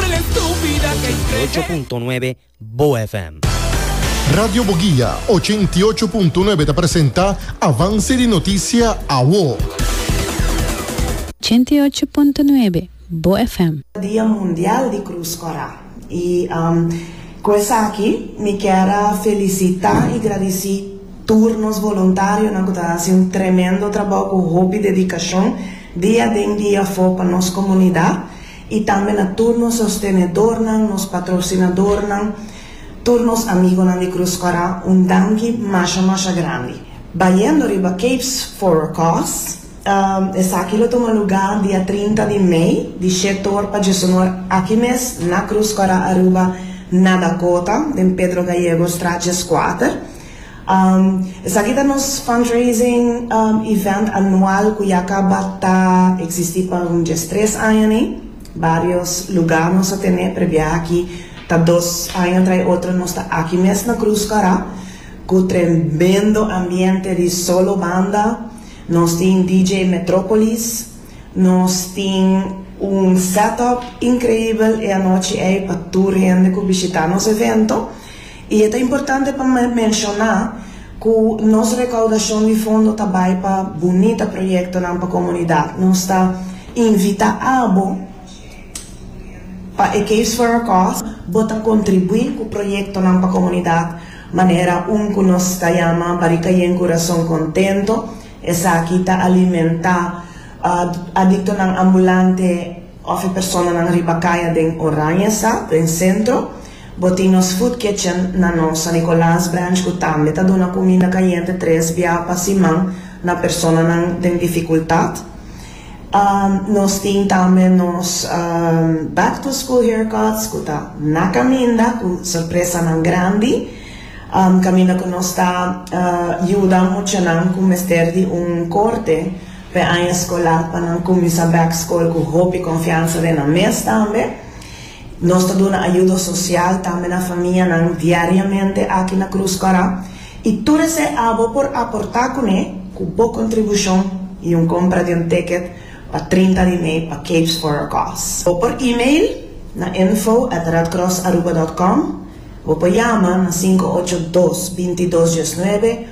98.9 Bo FM. Radio Boguia, ochenta i ocho punto nuebe ta presenta Avance di Noticia Awo. Ochenta i ocho punto nuebe Bo FM. Dia Mundial di Cruz Corá. Y cu esaki mi kier a felicita y gradici tur nos voluntarionan cu ta haci un tremendo trabao cu hopi dedicacion dia den dia afo pa nos comunidad. I tambe na tur nos sostenedornan, nos patrosinadornan, tur nos amigonan di Cruz Kòrá un danki masha masha grandi. Bayendo riba Capes for a Cause, esaki lo tuma lugá dia trinta di mei di she tor pa djosonor aki mes na Cruz Kòrá Aruba na Dakota den Pedro Gallego straat djeskuater. Esaki ta nos fundraising event anual cu ya caba ta existi pa un dies tres aña ni. Varios luga nos a tene, prebia aki ta dos aña trai otro nos ta aki mes na Cruz Cará cu tremendo ambiente di solo banda. Nos tin DJ Metropolis, nos tin un set up increibel e anochi ey pa tur hende cu bishita nos evento I e ta importante pa menshoná ku nos rekaudashon di fondo ta bai pa bunita proyektonan pa komunidat. Nos ta invitá abo pa e Caves for a Cause bo ta kontribuí ku proyektonan pa komunidat manera un ku nos ta yama Barika Yen Kurason Kontento, esaki ta alimentá adiktonan ambulante. Of e personanan riba kaya den Oranje sa, den sentro. Bo tin nos food kitchen na nos San Nicolas branch ku tambe ta duna kuminda kayente tres bia pa siman na personanan den difikultat. Nos tin tambe nos back to school haircuts ku ta na kaminda ku sorpresanan grandi kaminda ku nos ta yuda muchanan ku mester di un korte. p'e aña skolar pa nan kuminsá bèk skol ku hopi konfiansa den nan mes tambe. Nos ta duna ayudo sosial tambe na famianan diariamente aki na Krus Kòrá i tur esei abo por aportá kuné ku bo kontribushon i un kompra di un ticket pa trinta di mei pa Capes for a Cause. Bo por email na info at redcrossaruba dòt com. Bo por yama na sinku ocho dos binti dos diesnuebe.